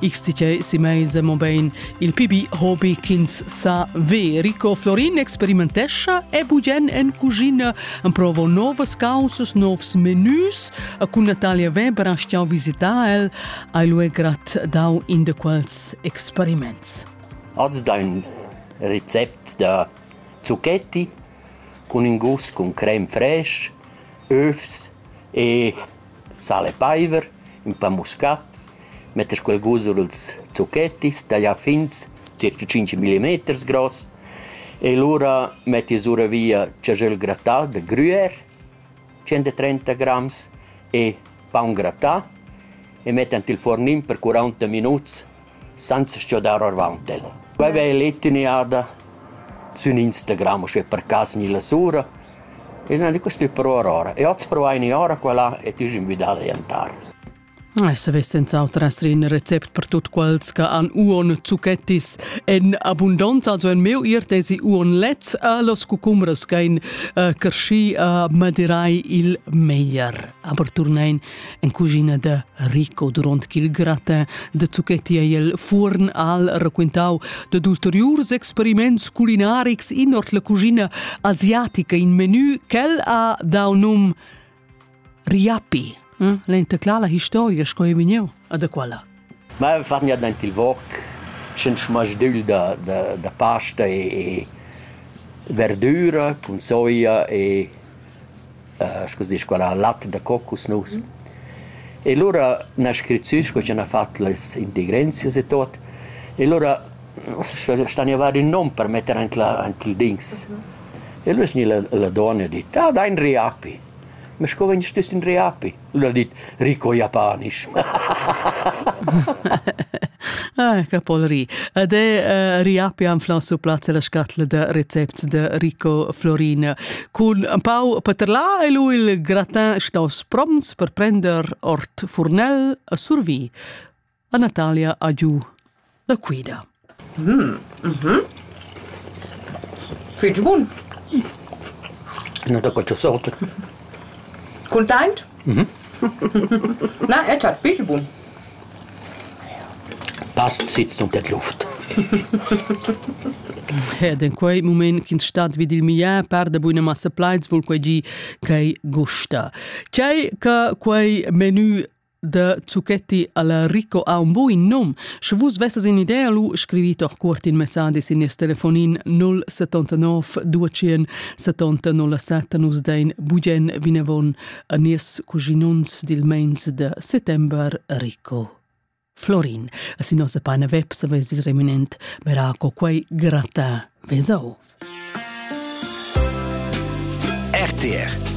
Xtichei Simeise mobein il pibi hobi ch'ins sa ver. Rico Florin experimentescha e bugen en cuschina emprovo novas causas, novs menus. A cun Natalia Weber ha stau visitar el, ai lu è grat dau in de quels experiments. Az dein recept da zucchetti cun in gust con crem fraîche, övs e sal e paiver, ün pa muscat, metter quel gusa lüls zuchettis, tagliar fins circa tschinch millimeters gross e lura metti sura via chajöl grattà da grüer, tschient e trenta grams e paun grattà e mett ant i'l furnin per curanta minuts Senza stgidar orvaunt el. Quei vegl etiniada sun ins da Gramo schi per caso ni lasura e nan è custü però Aurora. E hoz provai ni ora qua là e t'hage invidà da jantar. Ei savess senz'autras rir in recept per tutt quels che han uon zucchettis en abundanza, also en meu ir desi uon lets a los cucumbers che ein uh, cresci uh, madirai il meglier. Aber turnein En cuschina da Rico duront ch'il gratin da zucchetti ei el fuorn al raquintau dad ulteriurs experiments culinarics in ord la cuschina asiatica, in menu ch'el ha dau num riapi. Hm? L'entaclà la historia sco ei vegniu, a da quella. Mei fan gnanc aint il vot sch'ins masdügl da da da pasta e e verdüra cun soia e scu s'disch quella, lat da cocusnus. E lura üna scriziun sco chi hana fat las integrensias e tot. E lura stania a var ün nom per metter aint la aint il dings. E lura es gnü la la donna e dit: «Ah, dai ün riapi». Ma sco vegn stüss ün riapi? Ün ha dit Rico Japanisch. Ah, Capol ri. Ed è riapi am flan su plazza la scatla da recepts de Rico Florin. Cun un pau paterlà e lui il gratin staus prompts per prender ort furnel a survì. a Natalia a giu la quida. Mm, mm Fitg bun. Na da qualche sorte. Content? Mhm. Na, jetzt hat viel bun. Passt sitzt unter die Luft. Ed in quei moment ch'ins stat vid il miar parda buina massa plaids vul quei gi ch'ei gusta. Tgei che quei menü da zucchetti alla Rico ha un buin num. Sche vus vesses in idea, lu scrivit or cuort in messadi sin nies telefonin 079 200 70 07 nus dein bugen vinavon a nies cuginons dil meins de settember Rico. Florin, sin nossa pagina web saves il reminent Baraco quei grata vesau. RTR